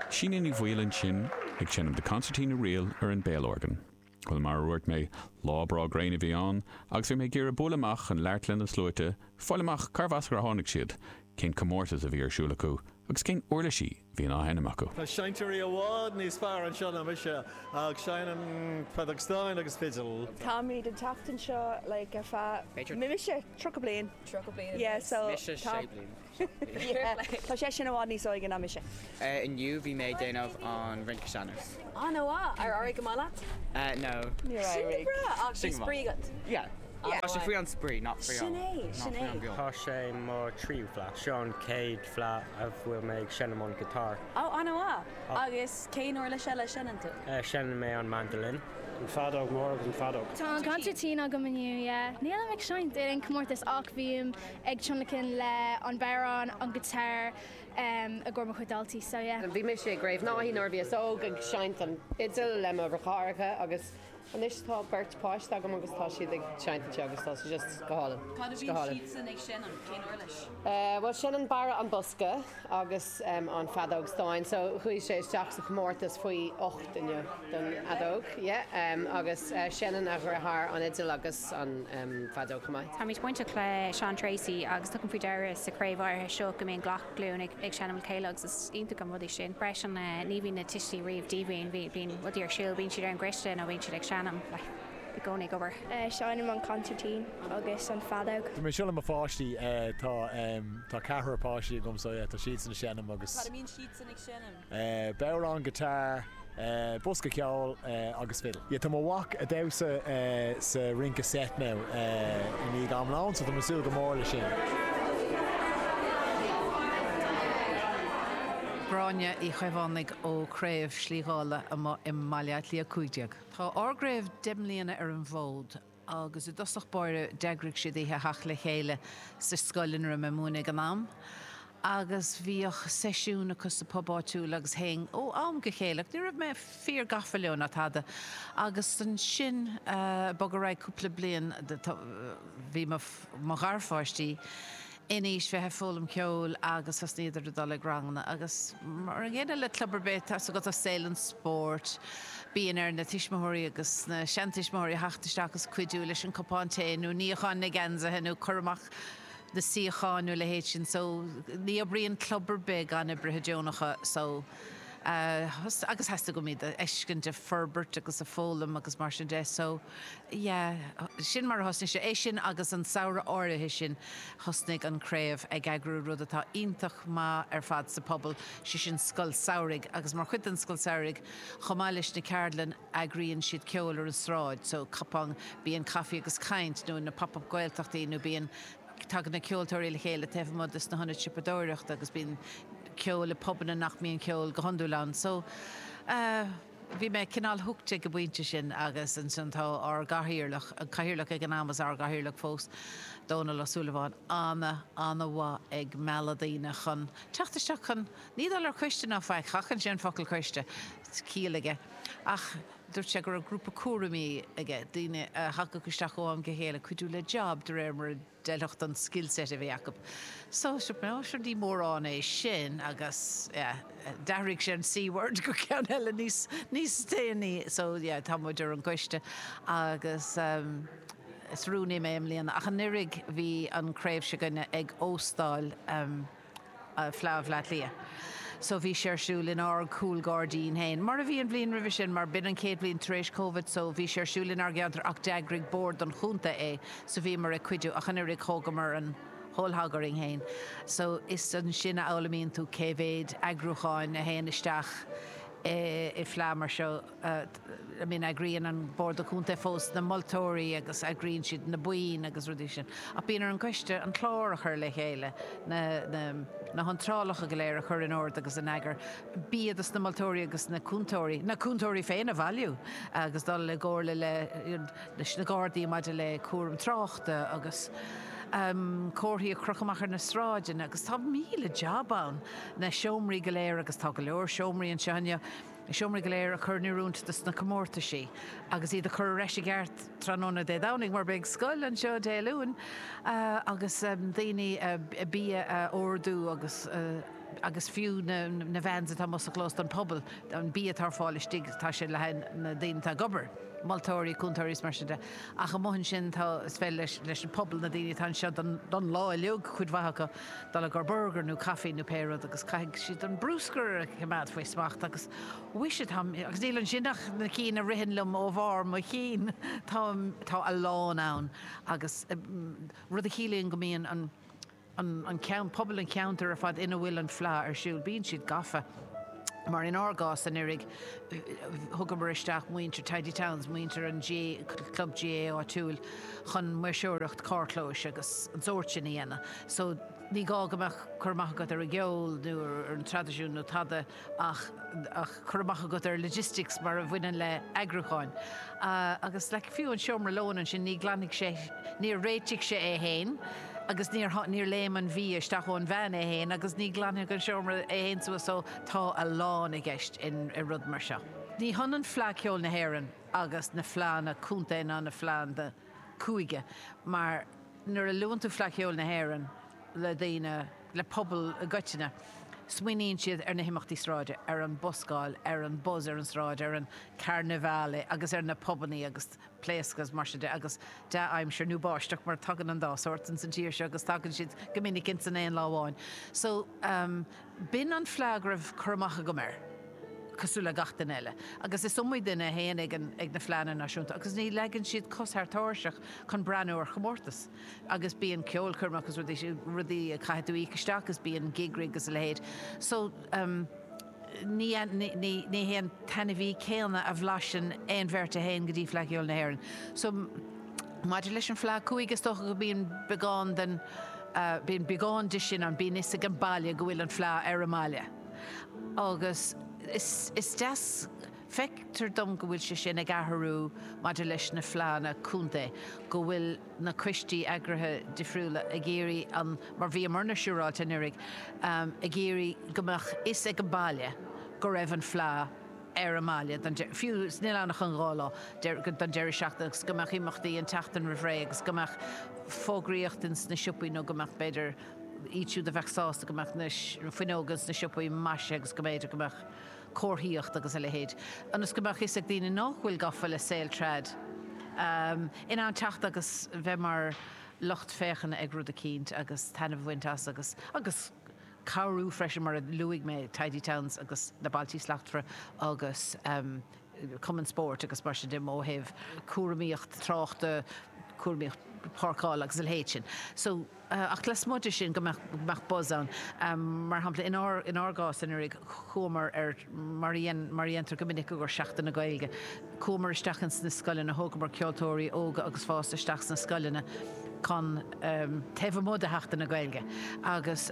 Síne Ní Bhaoill ansin ag seinm The Concertina Reel ar an béalorgan. Bhuel, mar a dhúirt mé, lá breá gréine a bhí ann, agus bhí mé ag iarraidh bualadh amach chun labhairt le na sluaite, fáil amach cárbh as ar tháinig siad, cén comórtas a bhí ar siúl acu, agus cén uirlisí a bhíonn á sheinm acu. Tá seinnteoirí i bhfad níos fearr anseo ná mise, ach seinnim feadóg stáin agus fidil. Táimid ag teacht anseo like ar feadh, b'fhéidir, mise, tríocha bliain. Tríocha bliain anuas, mise, sé bliain. Tá seisean i bhfad níos óige ná mise. Inniu bhí mé ag déanamh an rince sean-nós. Ana mhaith! Ar éirigh go maith leat? No. Níor éirigh. Sin go breá! Ach bhí spraoi agat? Yeah. Tá sé faoi an spraoi, not faoi an bua. Sin é, sin é. Tá sé mo tríú fleadh. Seo an chéad fleadh a bhfuil mé ag seinm an guitar. Oh, ana mhaith! Agus cén uirlis eile a seinneann tú? Seinneann mé an mandolin. An feadóg mhór agus an feadóg. Tá an consairtín agam inniu, yeah. Nílim ag seinnt ar aon comórtas ach bím ag tionlacan le an bodhrán, an guitar i gcomhair mo chuid daltaí so yeah. Bhí mise i gCraobh Naithí nuair a bhíos óg ag seinnt an fhidil le mo dheartháireacha agus anois tá beirt páiste agam agus tá siad ag seinnt anseo agus tá sé just go hálainn. Cad a bhíonn siadsan ag seinm? Cén uirlis? Bhuel seinneann Barra an bosca agus. an feadóg stáin so chuaigh sé isteach sa chomórtas faoi ocht inniu don fheadóg agus seinneann a dheartháir an fhidil agus an feadóg chomh maith. Táimid bainteach le Seán Treacy agus tugaim faoi deara sa chraobh áirithe seo go mbíonn gach glúin ag seinm le chéile agus is iontach an rud é sin freisin. Ní bhíonn na tuistí riamh díomhaoin, bíonn rudaí ar siúl, bíonn siad ar an gcoiste nó bíonn siad ag seinm. i gcónaí ag obair. Seinnim an consairtín agus an feadóg. Tá mé anseo le mo pháistí. Tá, tá ceathrar páistí agam so yeah tá siadsan ag seinm agus. Cad a mbíonn siadsan ag seinm? Bodhrán, guitar, bosca ceoil agus fiddle. Yeah tá mo mhac a' damhsa sa rince seit now i ndiaidh am lóin so tá mé ag súil go mór leis sin. Gráinne Uí Chaomhánaigh ó Craobh Slí Dhála amuigh i mBaile Átha Cliath 15. Tá ár gcraobh deich mbliana ar an bhfód agus i dtosach báire d'eagraigh siad oíche theacht le chéile sa scoil ina raibh mé ag múineadh ag an am agus bhíodh seisiún acu sa bpub áitiúil agus théinn ó am go chéile ach ní raibh mé fíor gafa leo ná tada agus ansin bogadh ar aghaidh cúpla bliain bhí mo gharpháistí in aois bheith ag foghlaim ceoil agus thosnaíodar ag dul ag ranganna agus mar an gcéanna le club ar bith atá agat i saol an spóirt bíonn ar na tuismitheoirí agus na seantuismitheoirí theacht isteach agus cuidiú leis an cupán tae nó níochán na geansaithe nó cur amach na suíochán nó a leithéid sin so ní oibríonn club ar bith gan oibrithe deonacha so agus theastaigh uaim iad a fheiscint ag forbairt agus ag foghlaim agus mar sin de so. Yeah, sin mar a thosnaigh sé. É sin agus an samhradh áirithe sin thosnaigh an Craobh ag eagrú rud atá iontach maith ar fad sa phobal, sé sin Scoil Samhraidh agus mar chuid den Scoil Samhraidh chomh maith leis na ceardlainn eagraíonn siad ceol ar an tsráid, so cupán, bíonn caife agus caint nó na Pop-Up Gaeltachtaí nó bíonn, tagann na ceoltóirí le chéile taobh amuigh de sna hionaid siopadóireachta agus bíonn ceol i bpubanna nach mbíonn ceol go hiondúil ann so eh. Bhí mé cineál hooked ag an bpointe sin agus ansin tá ár gcathaoirleach, an cathaoirleach ag an am is ár gcathaoirleach fós, Dónal Ó Súilleabháin, ana, ana mhaith ag mealladh daoine chun teacht isteach chun, ní dul ar choiste ná faic, sheachain sé an focal coiste, ciall aige, ach dúirt sé go raibh grúpa cúraimí aige, daoine a thagadh isteach ó am go chéile, cuidiú le job de réir mar a. D'fheilfeadh don skillset a bhí acu. So, rinne mé roinnt de sin agus, yeah, d'athraigh sé an C-word go coiste níos déanaí. So, yeah, tá muid ar an gcoiste agus, em, is rúnaí mé i mbliana ach anuraidh bhí an craobh s'againne ag óstáil, em, Fleadh Bhleá Cliath. So bhí sé ar siúl inár gcúl gairdín féin, mar a bhí an bhliain roimhe sin, mar b'in an chéad bhliain tar éis Covid, so bhí sé ar siúl inár gceantar ach d'eagraigh Bord an Chontae é, so bhíomar ag cuidiú ach anuraidh thógamar an whole thing orainn féin. So is ansin a fhoghlaimíonn tú cé mhéid eagrúcháin a théann isteach i bhfleadh mar seo. I mean eagraíonn an Bord Contae fós na moltóirí agus eagraíonn siad na boinn agus rudaí sin ach bíonn ar an gcoiste an clár a chur le chéile, na, na, na hiontrálacha go léir a chur in ord agus in eagar, bia do sna moltóirí agus na cúntóirí, na cúntóirí féin a bhailiú agus dul i gcomhairle le, leis na Gardaí maidir le cúram tráchta agus ehm comharthaí a chrochadh amach ar na sráideanna agus tá míle jab ann, na seomraí go léir agus tá go leor seomraí anseo inniu, Na seomraí go léir a chur in oiriúint do na comórtaisí agus iad a chur ar ais i gceart tráthnóna Dé Domhnaigh mar beidh scoil anseo Dé Luain agus daoine, bia a ordú agus agus fiú na vans atá amuigh sa chlós don phobal, an bia atá ar fáil istigh tá sé le haghaidh na daoine atá ag obair, moltóirí, cúntóirí is mar sin de. Ach amuigh ansin tá, is féidir leis an pobal, na daoine atá anseo don lá uiliug, cuid mhaith acu, Dul i gcomhair burgair nó caifí nó pé rud agus caithfidh siad an brúscar a choimeád faoi smacht agus mhuise tá, agus níl ansin ach na cinn a ritheann liom ó bharr mo chinn, tá, tá a lán ann agus rud a chiallaíonn go mbíonn an, an, an ceann, pobal an cheantair ar fad ina bhfuil an fleá ar siúl, bíonn siad gafa. Mar inár gcás anuiridh, thugamar isteach muintir Tidy Towns, muintir an chlub GAA áitiúil, chun maoirseoireacht carrchlóis agus an sórt sin a dhéanamh. So, ní gá go mbeadh cur amach agat ar an gceol nó ar an traidisiún nó tada ach cur amach agat ar logistics mar a bhaineann le eagrúcháin. Agus like, fiú an seomra lóin ansin, ní ghlan-, níor réitigh sé é fhéin. Agus níor, níor léim an bia isteach ón veain é fhéin agus ní ghlanfaidh an seomra é fhéin suas so tá a lán i gceist in, i rud mar seo. Ní hionann Fleadh Cheoil na hÉireann agus na fleadhanna contae ná na fleadhanna cúige mar nuair a luann tú Fleadh Cheoil na hÉireann le daoine, le pobal i gcoitinne, smaoiníonn siad ar na himeachtaí sráide, ar an buscáil, ar an buzz ar an sráid, ar an carnival agus ar na pubannaí agus. pléisiúr, mar sin de, agus dea-aimsir, nó báisteach, mar tagann an dá shórt ins an tír seo agus tagann siad go minic ins an aon lá amháin. So, b'in an fleá go raibh cur amach agam air, cosúil le gach duine eile. Agus is iomaí duine a théann ag na Fleánna Náisiúnta agus ní leagann siad cos thar tairseach chun breathnú ar chomórtas. Agus bíonn ceolchoirme agus rudaí, rudaí a chaithfidh tú íoc isteach agus bíonn gig rigs agus a leithéid. So. ní hé an t-ainmhí céanna a bhlaiseann aon bheirt a théann go dtí Fleadh Cheoil na hÉireann. So, maidir leis an Fleadh cúige, is dócha go mbíonn beagán den, bíonn beagán de sin ann, bíonn 'fhios ag an baile go bhfuil an Fleadh ar an mbaile. Agus is deas, feictear dom go bhfuil sé sin ag athrú maidir leis na Fleadhanna contae, go bhfuil, na coistí eagraithe difriúla ag iarraidh an, mar a bhíomarna siúráilte anuraidh, ag iarraidh go mbeadh fhios ag an baile go raibh an fleá ar an mbaile, fiú is níl ann ach an dhá lá, don deireadh seachtaine agus go mbeadh imeachtaí an tseachtain roimh ré agus go mbeadh fógraíocht ins na siopaí nó go mbeadh, b'fhéidir, iad siúd a bheadh sásta go mbeadh na fuinneoga ins na siopaí maisithe agus go mb'fhéidir go mbeadh. comharthaíocht agus a leithéid, ionas go mbeadh fhios ag daoine nách bhfuil gafa le saol trad, in ann teacht agus bheith mar lucht féachana ag rud eicínt agus taitneamh a bhaint as agus agus cabhrú freisin mar a luaigh mé Tidy Towns agus Na Bailtí Slachtmhara agus Cumann Spóirt agus mar sin de, um, ó thaobh cúramaíocht tráchta, cúramaíocht páirceála agus a leithéid sin. So. Ach lasmuigh de sin, go mbeadh buzz ann. Mar shampla, in ár gcás anuraidh, chuamar, mar a dhéantar go minic i gcomhair Seachtain na Gaeilge, chuamar isteach ins na scoileanna, thógamar ceoltóirí óga agus fásta isteach sna scoileanna chun, taobh amuigh de Sheachtain na Gaeilge agus,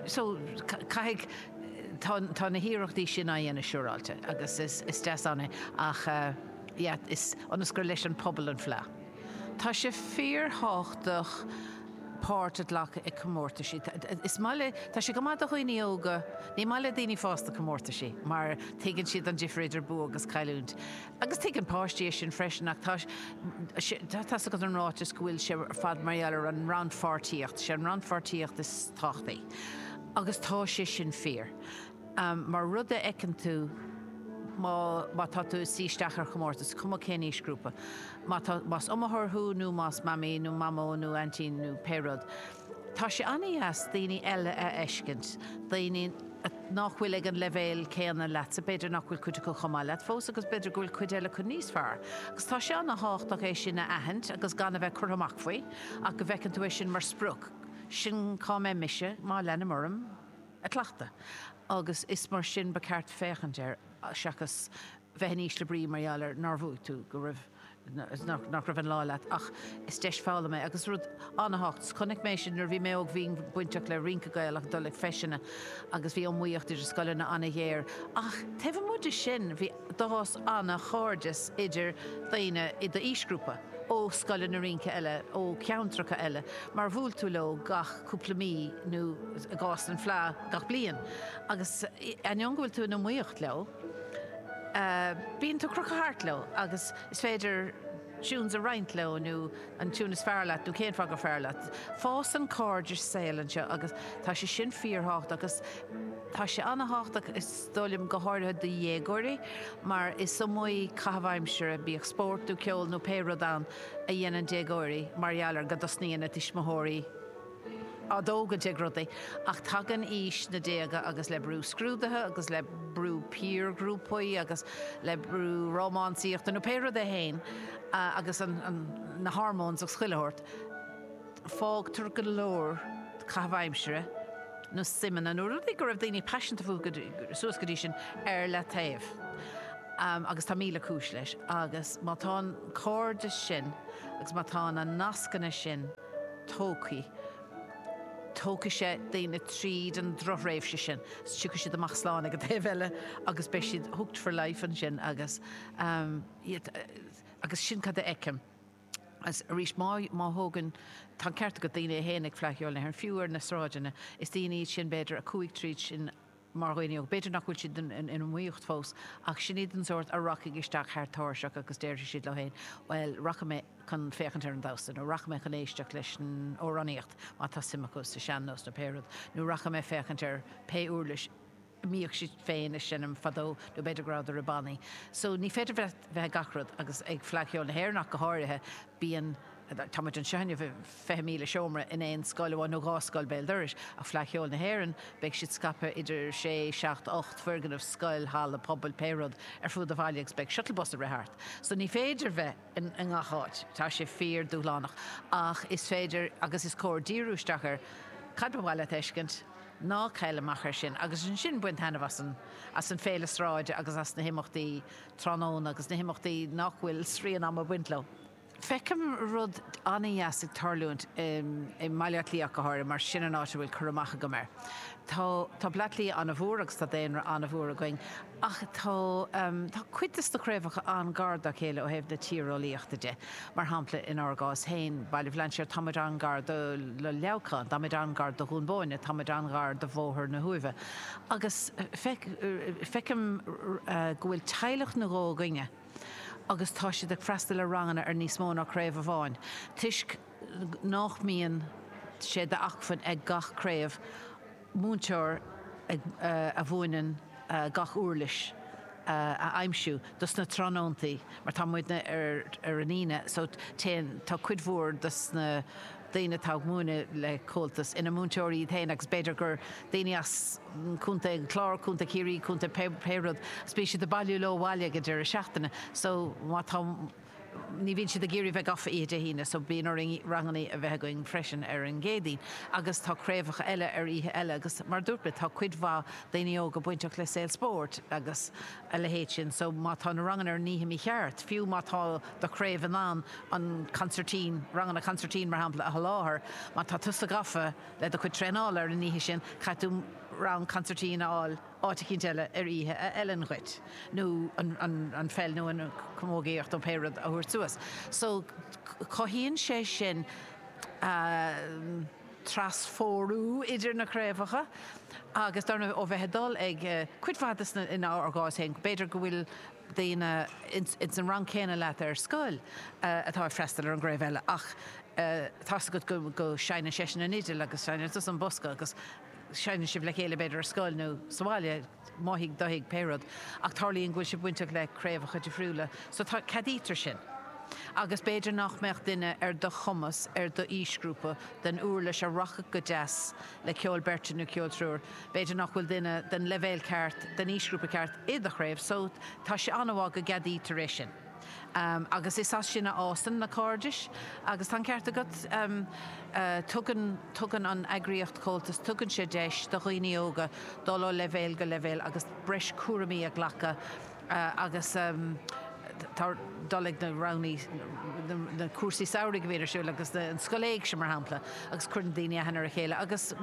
so, caithfidh, tá na hiarrachtaí sin á dhéanamh siúráilte agus is deas ann é ach, yeah, is, ionas gur leis an pobal an fleá. Tá sé fíorthábhachtach páirt a ghlacadh i comórtaisí. Is maith le, tá sé go maith do dhaoine óga, ní maith le daoine fásta comórtaisí mar tuigeann siad an difir idir bua agus cailliúint. Agus tuigeann páistí é sin freisin ach tá sé, tá's agat an ráiteas go bhfuil sé ar fad mar gheall ar an rannpháirtíocht, sé an rannpháirtíocht is tábhachtaí. Agus tá sé sin fíor. mar rud a fheiceann tú má má tá tú ag suí isteach ar chomórtas, is cuma cén aoisghrúpa. Má tá, más iomaitheoir thú nó más mamaí nó mamó nó aintín nó pé rud, tá sé an-deas daoine eile a fheiscint, daoine nach bhfuil ag an leibhéal céanna leatsa, b'fhéidir nach bhfuil cuid acu chomh maith leat fós agus b'fhéidir go bhfuil cuid eile acu níos fearr. Agus tá sé an-thábhachtach é sin a aithint agus gan a bheith curtha amach faoi ach go bhfeiceann tú é sin mar sprioc, sin cá mbeidh mise má leanaim orm. ag cleachtadh agus is mar sin ba cheart féachaint air seachas bheith in ísle brí mar gheall ar nár bhuaigh tú, go raibh, nach raibh an lá leat. Ach is deis foghlama é agus rud an-tábhacht. Chonaic mé sin nuair a bhí mé óg, bhínn bainteach le rince Gaelach ag dul ag feiseanna agus bhí iomaíocht idir scoileanna an-ghéar ach taobh amuigh de sin bhí, D'fhás an-chairdeas idir daoine i d'aoisghrúpa ó scoileanna rince eile ó cheantracha eile mar bhuail tú leo gach cúpla mí nó, i gcás an Fleadh, gach bliain. Agus ainneoin go bhfuil tú in iomaíocht leo, bíonn tú crochtha thart leo agus is féidir tunes a roinnt leo nó an tune is fearr leat nó cén fáth gur fearr leat. Fásann cairdeas saoil anseo agus tá sé sin fíorthábhachtach agus tá sé an-thábhachtach, dar liom, go háirithe do dhéagóirí, mar is iomaí caitheamh aimsire, bíodh spórt nó ceol nó pé rud ann, a dhéanann déagóirí mar gheall ar go dtosnaíonn a dtuismitheoirí á dtógaint ag rudaí. Ach tagann aois na déaga agus le brú scrúduithe agus le brú piarghrúpaí agus le brú rómánsaíochta nó pé rud é féin agus na hormones agus chuile shórt, Fágtar go leor caitheamh aimsire, nó suimeanna, nó rudaí go raibh daoine paiseanta fúthu suas go dtí sin, ar leataobh. Agus tá míle cúis leis. Agus má tá an cairdeas sin agus má tá na nascanna sin tógthaí, tógfaidh sé daoine tríd an drochthréimhse sin. Tiocfaidh siad amach slán ag an taobh eile agus beidh siad hooked for life ansin agus, you know, agus sin cad a fheicim. Agus arís, má thógann, tá an ceart agat, daoine a théann ag Fleadh Cheoil nó ar an, fiú ar na sráideanna, is daoine iad sin, b'fhéidir, a chuaigh tríd sin mar dhaoine óga. B'fhéidir nach bhfuil siad in iomaíocht fós ach sin iad an sórt a rachaidh isteach thar tairsigh agus déarfaidh siad leo féin, bhuel, rachaidh mé chun féachaint ar an damhsa nó rachaidh mé chun éisteacht leis an amhránaíocht má tá suim acu sa sean-nós nó pé rud, nó rachaidh mé féachaint ar pé uirlis mbíodh siad féin ag seinm fadó nó b'fhéidir go rabhadar i bannaí so ní féidir bheith ag gach rud agus ag Fleadh Cheoil na hÉireann ach go háirithe bíonn, tá muid anseo inniu i fiche míle seomra in aon scoil amháin nó dhá scoil béal dorais ach Fleadh Cheoil na hÉireann beidh siad scaipthe idir sé, seacht, ocht foirgneamh, scoil, halla pobail, pé rud ar fuaid an bhaile agus beidh shuttle bus ag rith thart so ní féidir bheith. i ngach áit. Tá sé fíor dúshlánach ach is féidir agus is cóir díriú isteach ar cad ba mhaith leat a fheiscint. Ná caill amach ar sin agus ansin bain taitneamh as an as an bhféile sráide agus as na himeachtaí tráthnóna agus na himeachtaí nach bhfuil srian ama ag baint leo. Feicim rud an-deas ag tarlúint i mBaile Átha Cliath ach go háirithe mar sin an áit a bhfuil cur amach agam air. Tá Baile Átha Cliath an-mhór agus tá daonra an-mhór againn. Ach tá tá cuid dos na craobhacha an-ghar dá chéile ó thaobh na tíreolaíochta de. Mar shampla, inár gcás féin, Baile Bhlainséir, tá muid an-ghar do Leamhcán, tá muid an-ghar do Dhún Bóinne, tá muid an-ghar do Bhóthar na hUaimhe. Agus feicim go bhfuil teaghlach nó dhó againne agus tá siad ag freastal ar ranganna ar níos mó ná craobh amháin toisc, nach mbíonn sé d'acmhainn ag gach craobh múinteoir a mhúineann gach uirlis a aimsiú dos na tráthnóntaí mar tá muidne ar an Aoine so téann, tá cuid mhór dos na daoine atá ag múineadh le Comhaltas ina múinteoirí iad féin agus b'fhéidir gur daoine as Contae an Chláir, Contae Chiarraí, Contae pé rud, so bíonn siad ag bailiú leo abhaile ag an deireadh seachtaine so má tá. Ní bhíonn siad ag iarraidh bheith gafa oíche Dé hAoine, so bíonn orainn ranganna a bheith againn freisin ar an gCéadaoin. Agus tá craobhacha eile ar oíche eile agus, mar a dúirt mé, tá cuid mhaith daoine óga bainteach le saol spóirt agus a leithéid sin, so má tá na ranganna ar an oíche mícheart, fiú má tá do chraobh in ann an consairtín, ranganna consairtín mar shampla, a sholáthar, má tá tusa gafa le do chuid traenála ar an oíche sin, caithfidh tú rang consairtín a fháil. áit eicínt eile ar oíche a fheileann dhuit, nó an pheil nó an camógaíocht nó pé rud a thabhairt suas. So, cothaíonn sé sin trasphórú idir na craobhacha agus dar ndóigh ó bheith ag dul ag cuid mhaith de sna, in ár gcás féin, b'fhéidir go bhfuil daoine ins an rang céanna leat ar scoil atá ag freastal ar an gcraobh eile ach tá 's agat go seinneann seisean an fhidil agus seinneann tusa an bosca agus seinneann sibh le chéile, b'fhéidir ar scoil nó sa bhaile, mo thigh, do thigh, pé rud, ach tarlaíonn go bhfuil sibh bainteach le craobhacha difriúla, so tá, ceadaítear sin. Agus b'fhéidir nach mbeadh duine ar do chumas, ar d'aoisghrúpa, den uirlis a rachadh go deas le ceol beirte nó ceol triúir, b'fhéidir nach bhfuil duine den leibhéal ceart, den aoisghrúpa ceart, i do chraobh, so tá sé an-mhaith go gceadaítear é sin. Agus is as sin a fhásann na cairdis. Agus tá an ceart agat, tugann, tugann an eagraíocht Comhaltas, tugann sé deis do dhaoine óga dul ó leibhéal go leibhéal agus breis cúraimí a ghlacadh agus tá, dul chuig na ranganna, na cúrsaí samhraidh a bhíonn ar siúl agus an Scoil Éigse mar shampla agus cuireann daoine aithne ar a chéile agus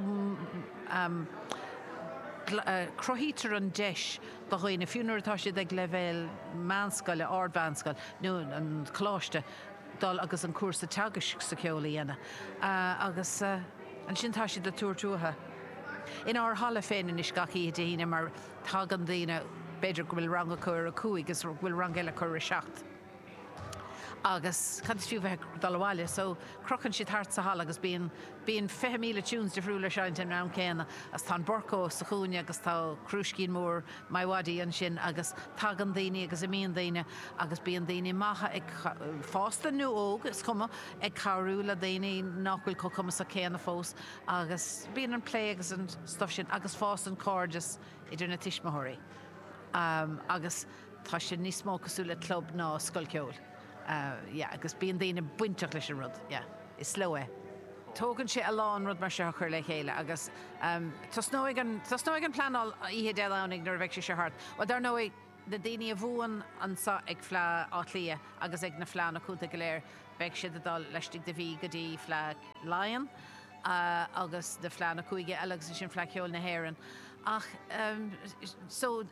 cruthaítear an deis do dhaoine, fiú nuair atá siad ag leibhéal meánscoile, ardmheánscoile nó an coláiste, dul agus an cúrsa teagaisc sa cheol a dhéanamh. Agus ansin tá siad ag tabhairt uathu. Inár halla féin anois gach oíche Dé hAoine mar tagann daoine, b'fhéidir go bhfuil rang acu ar a cúig is go bhfuil rang eile acu ar a seacht, agus cad is fiú bheith ag dul abhaile so crochann siad thart sa halla agus bíonn bíonn fiche míle tunes difriúla á seinnt ag an am céanna agus tá an Burco sa chúinne agus tá crúiscín mór MiWadi ansin agus tagann daoine agus imíonn daoine agus bíonn daoine maithe fásta nó óg is cuma ag cabhrú le daoine nach bhfuil chomh cumasach céanna fós agus bíonn an plé agus an stuff sin agus fásann cairdeas idir na tuismitheoirí agus. Tá sé níos mó cosúil le club ná scoil ceoil. Yeah, agus bíonn daoine bainteach leis an rud. Yeah. Is leo é. Tógann sé a lán rud mar seo a chur le chéile agus tosnóidh an, tosnóidh an phleanáil oíche Dé Domhnaigh nuair a bheidh sé seo thart. Bhuel, dar ndóigh, na daoine a bhuann anseo ag Fleá Átha Cliath agus ag na fleánna contae go léir, beidh siad ag dul laistigh de mhí go dtí Fleá Laighean agus na fleánna cúige eile agus ansin Fleá Cheoil na hÉireann. Ach, eh, so,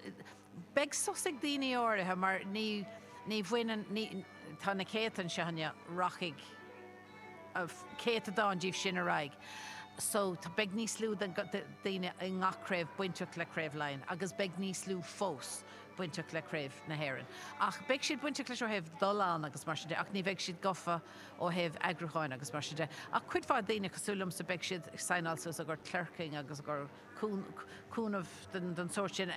Beidh sos ag daoine áirithe mar ní, ní bhaineann, ní, tá na céadta anseo inniu, rachaidh céatadán díobh sin ar aghaidh so beidh níos lú de dhaoine i ngach craobh bainteach le Craobh Laighean agus beidh níos lú fós bainteach le Craobh na hÉireann. Ach beidh siad bainteach leis ó thaobh dul ann agus mar sin de ach ní bheidh siad gofa ó thaobh eagrúcháin agus mar sin de. Ach cuid mhaith daoine cosúil liomsa beidh siad ag saighneáil suas a gcuid clerking agus a gcuid cúnamh den sórt sin.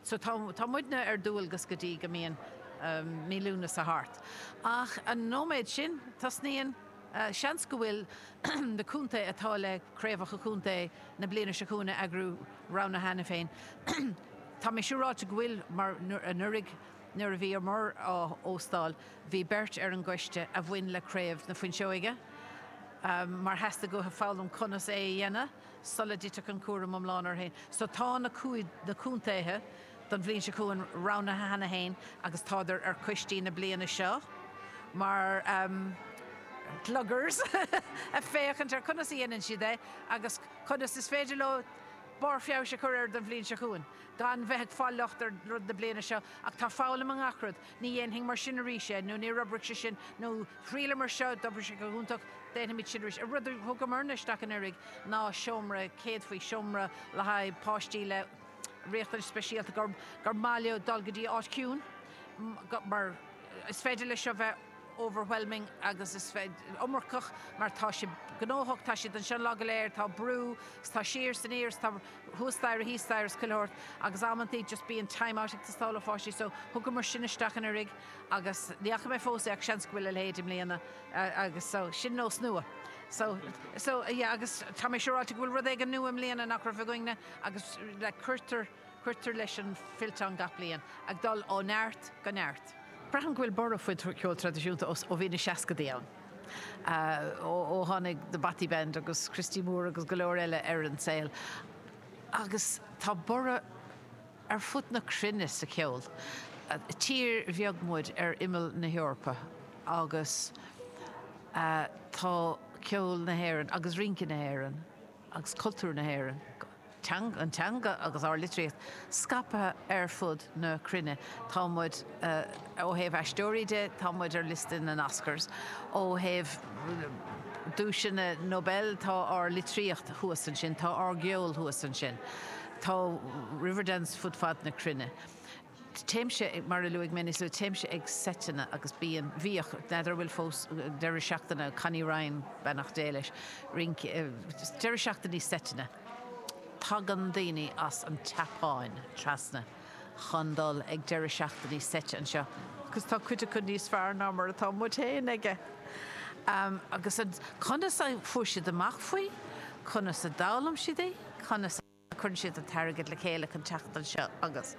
So tá muidne ar dualgas go dtí go mbíonn mí Lúnasa thart. Ach an nóiméad sin, tosnaíonn, seans go bhfuil na contaetha atá le craobhacha contae na bliana seo chugainn a eagrú roghnaithe cheana féin. Tá mé siúráilte go bhfuil mar anuraidh nuair a bhí an Mhuir á óstáil, bhí beirt ar an gcoiste a bhain le Craobh na Fuinseoige mar theastaigh uathu foghlaim conas é a dhéanamh. sula dtitfeadh an cúram iomlán orthu féin. So tá na cúig, na contaetha don bhliain seo chugainn roghnaithe cheana féin agus tádar ar coistí na bliana seo mar ehm gluggers ag féachaint ar conas a dhéanann siad é agus conas is féidir leo barr feabhais a chur air don bhliain seo chugainn gan bheith ag fáil locht ar rud na bliana seo ach tá foghlaim i ngach rud. Ní dhéanfaimid mar sin arís é, nó níor oibrigh sé sin, nó thriaileamar seo, d'oibrigh sé go hiontach, déanfaimid sin arís. Rud a thugamarna isteach anuraidh ná seomra céadfaí, seomra le haghaidh páistí le riachtanais speisialta, gur maith leo dul go dtí áit chiúin, mar is féidir leis seo bheith. overwhelming agus is iomarcach mar tá sé gnóthach, tá siad anseo an lá go léir, tá brú, agus tá siar is aniar, agus tá thuas staighre thíos staighre is chuile shórt agus amantaí just bíonn time out ag teastáil ó pháistí so thugamar sin isteach anuraidh agus ní fhaca mé fós é ach seans go bhfuil a leithéid i mbliana agus so sin nós nua. So, so yeah agus tá mé siúráilte go bhfuil rud éigin nua i mbliana nach raibh againn-ne agus like cuirtear, Cuirtear leis an bhfillteán gach bliain, ag dul ó neart go neart. Braithim go bhfuil borradh faoin cheol traidisiúnta ó bhí na seascaidí ann, ó tháinig The Bothy Band agus Christy Moore agus go leor eile ar an saol, agus tá borradh ar fud na cruinne sa cheol. Tír bheag muid ar imeall na hEorpa agus tá ceol na hÉireann agus rince na hÉireann agus cultúr na hÉireann, teanga, an teanga agus ár litríocht scaipthe ar fud na cruinne. Tá muid, ó thaobh aisteoirí de, tá muid ar liosta na nOscars. Ó thaobh duaiseanna Nobel, tá ár litríocht thuas ansin, tá ár gceol thuas ansin. Tá Riverdance fud fad na cruinne. Téimse, mar a luaigh mé níos luaithe, téimse ag seiteanna agus bíonn, bhíodh, n'fheadar an bhfuil fós, deireadh seachtaine, Connie Ryan, beannacht Dé leis, rince, deireadh seachtainí seiteanna. Tagann daoine as an tSeapáin trasna chun dul ag deireadh seachtainí seite anseo agus tá cuid acu níos fearr ná mar atá muid féin aici. Agus conas a fuair siad amach faoi? Conas a d'fhoghlaim siad é? Conas a. Cuireann siad an t-airgead le chéile chun teacht anseo agus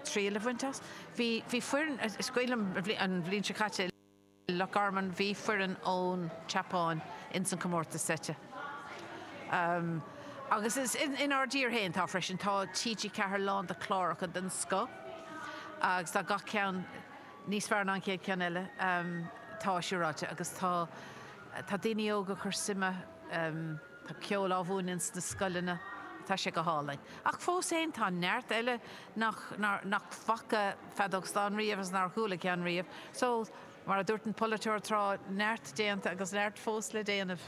triail a bhaint as. Bhí foireann, sa bhFleadh an bhliain seo caite i Loch Garman, bhí foireann ón tSeapáin ins an comórtas seite. Agus inár dtír fhéin atá freisin. Tá TG4 lán de chláracha den scoth agus tá gach ceann níos fearr ná an chéad ceann eile, tá siúráilte. Agus tá, tá daoine óga ag cur suime. Tá ceol á mhúineadh ins na scoileanna, tá sé go hálainn. Ach fós féin, tá neart eile nach bhfaca feadóg stáin riamh agus nár chuala ceann riamh. So, mar a dúirt an polaiteoir tráth, neart déanta agus neart fós le déanamh.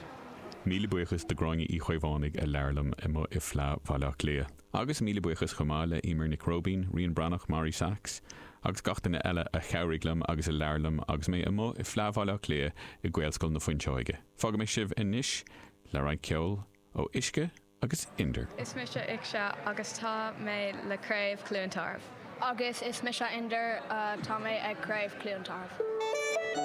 Míle buíochas do Ghráinne Uí Chaomhánaigh a labhair liom amuigh ag Fleadh Bhaile Átha Cliath. Agus míle buíochas chomh maith le Emer Nic Róibín, Rían Breathnach, Màiri Sachs agus gach duine eile a chabhraigh liom agus a labhair liom agus mé amuigh ag Fleadh Bhaile Átha Cliath i nGaelscoil na Fuinseoige. Fágfaidh mé sibh anois le roinnt ceoil ó Uisce agus Inder. Is mise Uisce agus tá mé le Craobh Chluain Tarbh. Agus is mise Inder, tá mé ag Craobh Chluain Tarbh.